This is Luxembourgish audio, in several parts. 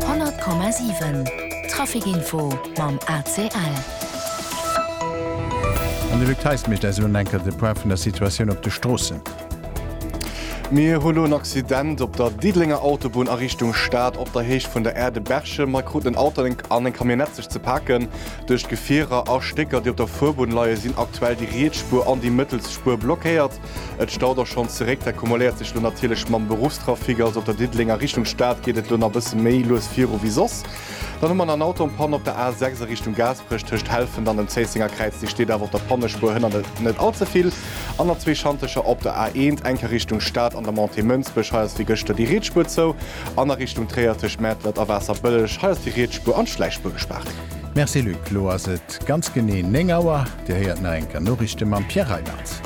100,7 Trafic Info mam ACL. An de Luc Theis mécht eis elo enker de Point vun der Situatioun op de Stroossen. Mir hu lo en Accident op der Diddelenger Autobunn a Richtung Stad op der Héicht vun der Aire de Berchem. Hei kruten en Auto an eng Camionnette sech ze paken. Duerch d'Gefierer a Stécker, déi op der Fuerbunn leie, sinn aktuell déi riets Spuer an déi mëttels Spuer blockéiert. Et staut och schonn zeréck. Dat kumuléiert sech lo natierlech mam Beruffstrafic. Also op der Diddelenger Richtung Stad geet et lo nach e bësse méi lues viru wéi soss. Dann hu mer nach en Auto an Panne op der A6 a Richtung Gaasperech tëscht Helfent an dem Zéissenger Kräiz. Dee steet awer op der Pannespuer hënner net net all ze vill. An der zwee Schantecher op der A1, enker Richtung Stad an der Montée Mënsbech. Hei ass wéi gëschter déi riets Spuer zou. An a Richtung Tréier tëscht Mäertlert a Waasserbëlleg. Hei ass déi riets Spuer an d'Schläichspuer gespaart. Merci Luc. Lo ass et ganz genee 9 Auer. Dir héiert nach eng Kéier Noriichte mam Pierre Reiland.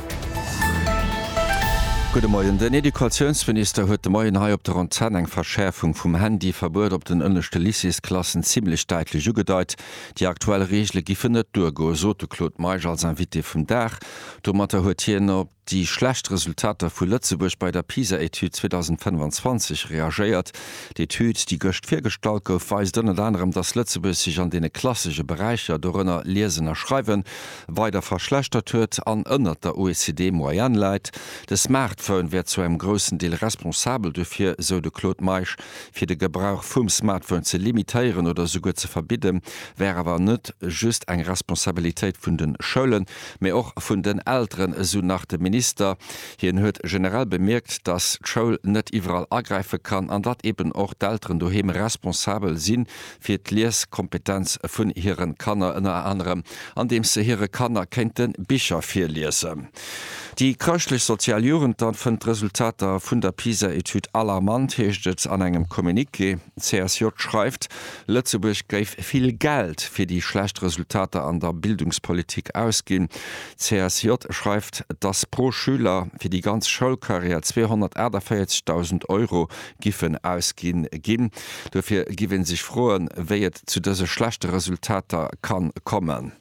Gudde Moien. Den Educatiounsminister huet de Moien hei op der Antenn eng Verschäerfung vum Handyverbuet op den ënneschte Lycéesklassen zimmlech däitlech ugedeit. Déi aktuell Reegele giffen net duergoen, sot de Claude Meisch als Invité vum Dag. Domatter huet hien op. déi schlecht Resultater vu Lëtzebuerg bei der PISA-Etüd 2025 reagéiert. D'Etüd, déi gëscht virgestallt gouf, weist ënnert anerem, datt Lëtzebuerg sech an deene klassesche Beräicher, dorënner Liesen a Schreiwen, weider verschlechtert huet an ënnert der OECD-Moyenne läit. De Smartphone wär zu engem groussen Deel responsabel dofir, esou de Claude Meisch. Fir de Gebrauch vum Smartphone ze limitéieren oder esouguer ze verbidden, wär awer net just eng Responsabilitéit vun de Schoulen. Mee och vun den Elteren, esou nach de Minister. Hien huet generell bemierkt, datt d'Schoul net iwwerall agräife kann an datt eben och d'Elteren doheem responsabel si fir d'Lieskompetenz vun hire Kanner, ënner anerem andeems se hire Kanner kéinte Bicher virliesen. Déi chrëschtlech-sozial Jugend dann fënnt d'Resultater vun der PISA-Etüd alarmant, heescht et an engem Communiqué. D'CSJ schreift, Lëtzebuerg géif vill Geld fir déi schlecht Resultater an der Bildungspolitik ausginn. D'CSJ schreift, dass pro Schüler fir déi ganz Schoulkarriär 248.000 Euro giffen ausgi ginn. Dofir giff ee sech froen, wéi et zu dëse schlechte Resultater ka kommen.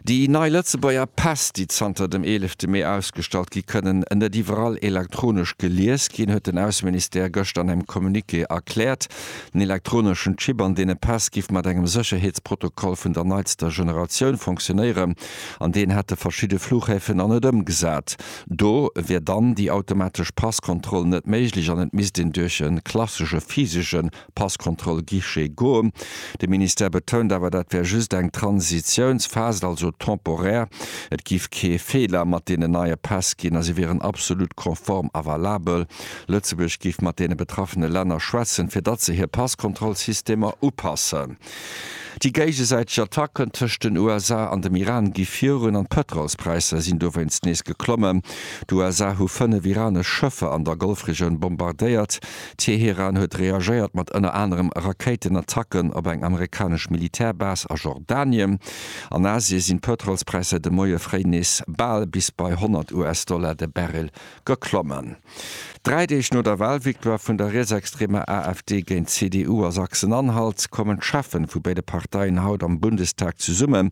Déi nei Lëtzebuerger Päss, déi zanter dem eelefte Mee ausgestallt gi kënnen net iwwerall elektronesch gelies ginn, huet den Ausseministère gëschter an engem Communiqué erkläert. Den elektroneschen Chip an deene Päss giff mat engem Sécherheetsprotokoll vun der neitster Generatioun funktionéieren an deen hätte verschidde Flughäfen nach net ëmgesat. Do wier dann déi automatesch Passkontroll net méiglech an et misst een duerch e klassesche physesche Passkontroll Guichet goen. De Ministère betount awer, dat wär just eng Transitiounsphase, also temporär. Et géif kee Feeler mat deenen neie Päss ginn a si wieren absolut konform a valabel. Lëtzebuerg géif mat deene betraffene Länner schwätzen, fir datt se hir Passkontrollsystemer upassen. Déi géigesäiteg Attacken tëscht den USA an dem Iran gi virun an d'Pëtrolspräisser sinn dowéinst nees geklommen. D'USA hu fënnef iranesch Schëffer an der Golfregioun bombardéiert. Teheran huet reagéiert mat ënner anerem Rakéitenattacken op eng amerikanesch Militärbase a Jordanien. An Asie sinn d'Pëtrolspräisser säit de Moie fréi nees bal bis bei 100 US-Dollar de Barrel geklommen. Dräi Deeg no der Walvictoire vun der rietsextremer AfD géint d'CDU a Sachsen-Anhalt kommen d'Cheffen vu béide Parteien haut am Bundestag zesummen,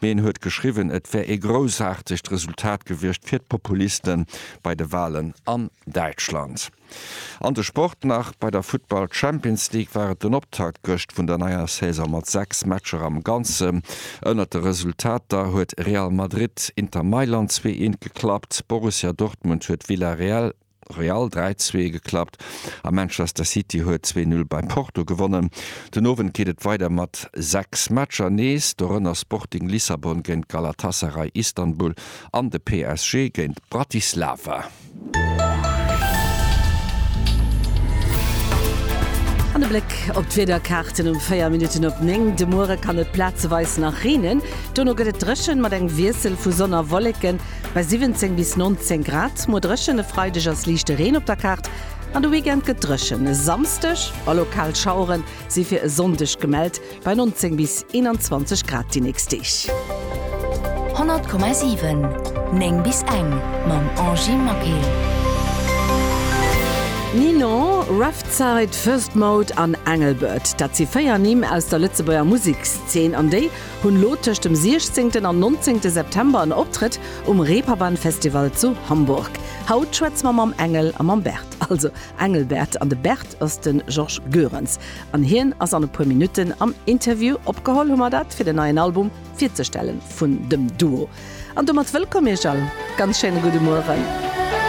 Mee en huet geschriwwen, et wär ee groussaartegt Resultat gewiescht fir d'Populiste bei de Walen an Däitschland. An de Sport nach, Bei der Futtball Champions League war et den Optakt gëscht vun der neier Saison mat 6 Matcher am Ganze. Ënnert de Resultater huet Real Madrid Inter Mailand zwee eent geklappt, Borussia Dortmund huet Villarreal Real dräi zwee geklappt a Manchester City huet zwee null bei Porto gewonnen. Den Owend geet et weider mat sechs Matcher nees, dorënner Sporting Lissabon géint Galatasaray Istanbul an de PSG géint Bratislava. An e Bléck op d'Wiederkaarten um 4 Minutten op 9. De Muere kann et plazeweis nach reenen, dono gëtt et dréchen mat engem Wiessel vu Sonn a Wolleken. Bei 17 bis 19 Grad, muer dréchen. E Freideg ass liichte Reen op der Kaart an de Weekend gëtt dréchen. E Samsdeg a lokal Schauere si fir e Sonndeg gemellt, bei 19 bis 21 Grad déi nächst Deeg. 100,7 9 bis eng mam Angy Maquet. Ninon, Revzeit, First Mode an Engelbert, dat si véier Nimm aus der Lëtzebuerger Musekszeen an déi, Hunn lo tëscht dem 16 an 19 September en Optrëtt um Reeperbahn Festival zu Hamburg. Haut schwätze mer mam Engel a mam Bert, also Engelbert, an de Bert ass de Georges Goerens an hien ass an e puer Minutten am Interview. Opgeholl hu mer dat fir den neien Album virzestellen vun dem Duo an domat wëllkomm iech all. Ganz schéine gudde Mueren.